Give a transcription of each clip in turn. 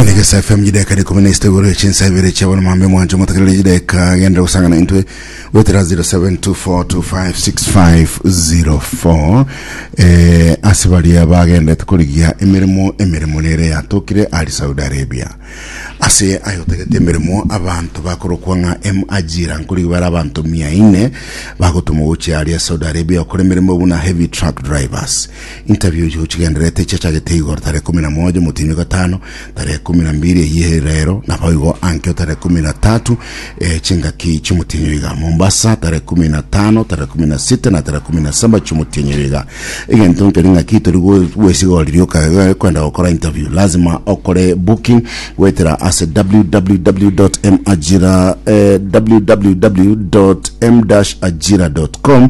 Nege SFM jideka rikumi na isita igoro echinsa ibere chiabona mambe mwancho motakirire jideka genda gusangana intwe wetera 0724256504 eh, ase baria bagendete korigia emeremo emeremo nere yatokire ari Saudi Arabia ase ayotagete emeremo abanto bakorokwa ng'a M Ajira nkorigia bare abanto mia ine bagotoma gochia aria Saudi Arabia okora emeremo buna heavy truck drivers Interview chigochigendererete chiachagete igoro tarehe ikomi na moja omotini bwa gatano tarehe ikomi na mbiri eyio ere rero naboigo ankio tarehe ikomi na tatu eh, chingaki chiomotini oyo iga mombasa tarehe ikomi na tano tarehe ikomi na sita na tarehe ikomi na saba chiomotini oyo iga egento nkeri ng'aki tori gwe- gwesigoriri oka- kwenda gokora interview lazima okore booking goetera ase www.majira eh, www.m-ajira.com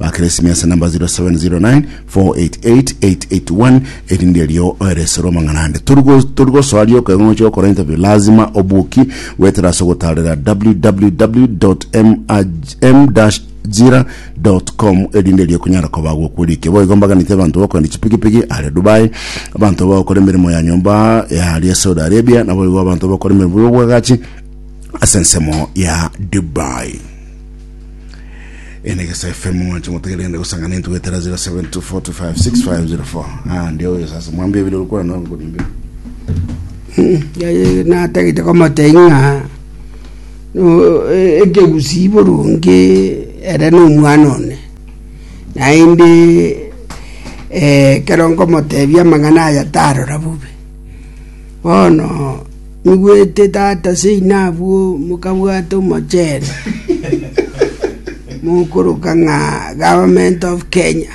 Bakresimesi namba 0707909881 erinde erio oeresere omang'ana ande tori gosoa rioka egong'o chia gokora interview lazima obuki goetera ase ogotarera www.m-ajira jira.com erinde erio kunyara koba gokwerike boigo mbaganite abanto bakorende chipigipigi are Dubai abanto bagokora emeremo ya nyomba ya aria Saudi Arabia naboigo abanto bakora emeremo y'obwagachi ase ensemo ya Dubai ene gesa fm mwanche motegere ende gosangana intu getera 0724256504 ah ndio huyo sasa mwambie vile ulikuwa na kuniambia yaye natagete komoteng'a ekegusi boronge ere nomwana one naende eh, kero nkomotebia amang'ana aya tarora bobe bono Nigwete tata seino abwo mokabwata omochenu mokoroka ng'a Government of Kenya.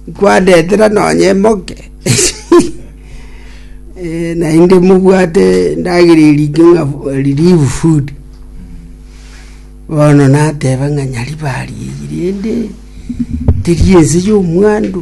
Nkwandeetera nonye emoke Eh, naende mobwate endagera erike ng'a relief food bono nateba ng'a nyari barie eyi rende teri ense ya omwandu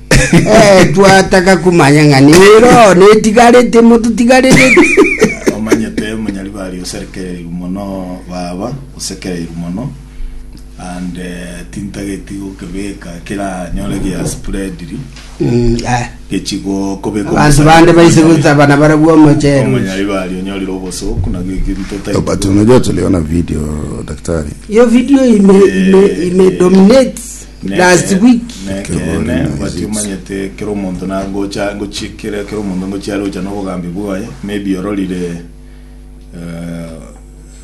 Eh, twataka kumanya ng'a nero netigarete mototigarete. omanyete omonyaribari oserekereirwe mono baba osekereirwe mono and eh, tintageti gokebeka kera nyore gia spreadiri Mm, ah. gechigo kobeka Abanto bande baise gotabana barabwo omochero. omonyaribari onyorire obosoku nabio ekinto otaigwe. But unajua tuliona video daktari Hiyo video ime ime ime dominate Last Nekeene, week. nekeene, batomanyete kera omonto na gocha gochi kera kera omonto ngochi are gocha nobogambi bwaye maybe ororire eh,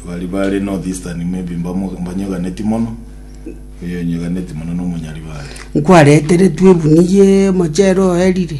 bari bare north eastern maybe mbamo- mbanyeganeti mono oyo onyeganeti mono nomonyari bare nkwareteretwe ebuniya emochere oerire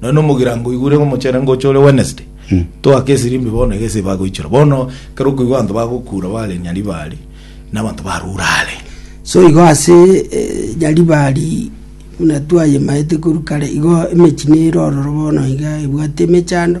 Nonya nomogirango oigure omochene ngocha ore Wednesday. Toake esirimbi bono egese bagoichora. Bono kero okoigwa abanto bagokura bare Nyaribari na abanto barure are. So igo ase eh, Nyaribari buna twayemaete korwa kare, igo emechie nere ororo bono iga ebwate emechando,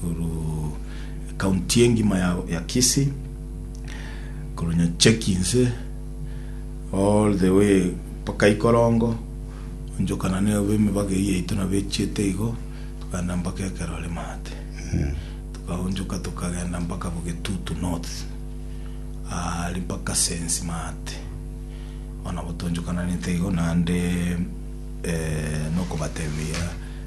Korwa ekaunti engima ya, ya Kisii, korwa Nyachekinse all the way mpaka Ikorongo, onchokana na emebaga eye yaito nabo echiete igo, tokaenda mpaka ekero are maate. Tokaonchoka tokagenda mpaka Bogetutu North, ah, ari mpaka Sensi maate. Bono nabo toonchokananete igo naende eh, nokobatebi buya.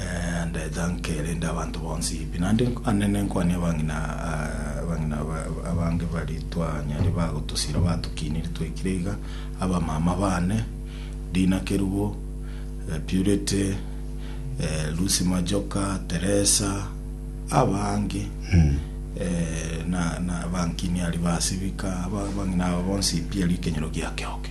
Eh, ndeta nkerende abanto bonsi pi naende nk- ane nenkwane abang'ina ah, abang'ina aba- aba- abange bari twanyare bagotosira batokinire twaikire iga abamama bane dina kerubo eh, purity eh, lucy majoka teresa abange eh, na, na bankini ari basibika aba- abang'ina aba bonsi pi ari ekenyoro giake oke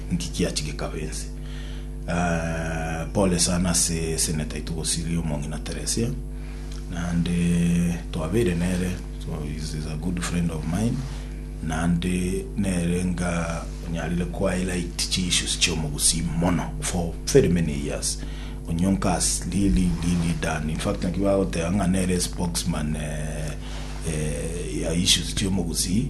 Nki kiachi gekaba ense? Aah, pole sana ase seneta aito Gosiri, Omong'ina Teresia, naende twabeire nere, so is is a good friend of mine, naende nere nga onyarire ko highlight chi issues chia omogusii mono for very many years. Onyonka has really really done, in fact naki bagoteba ng'a nere spokesman eh, eh, ya issues chia omogusii,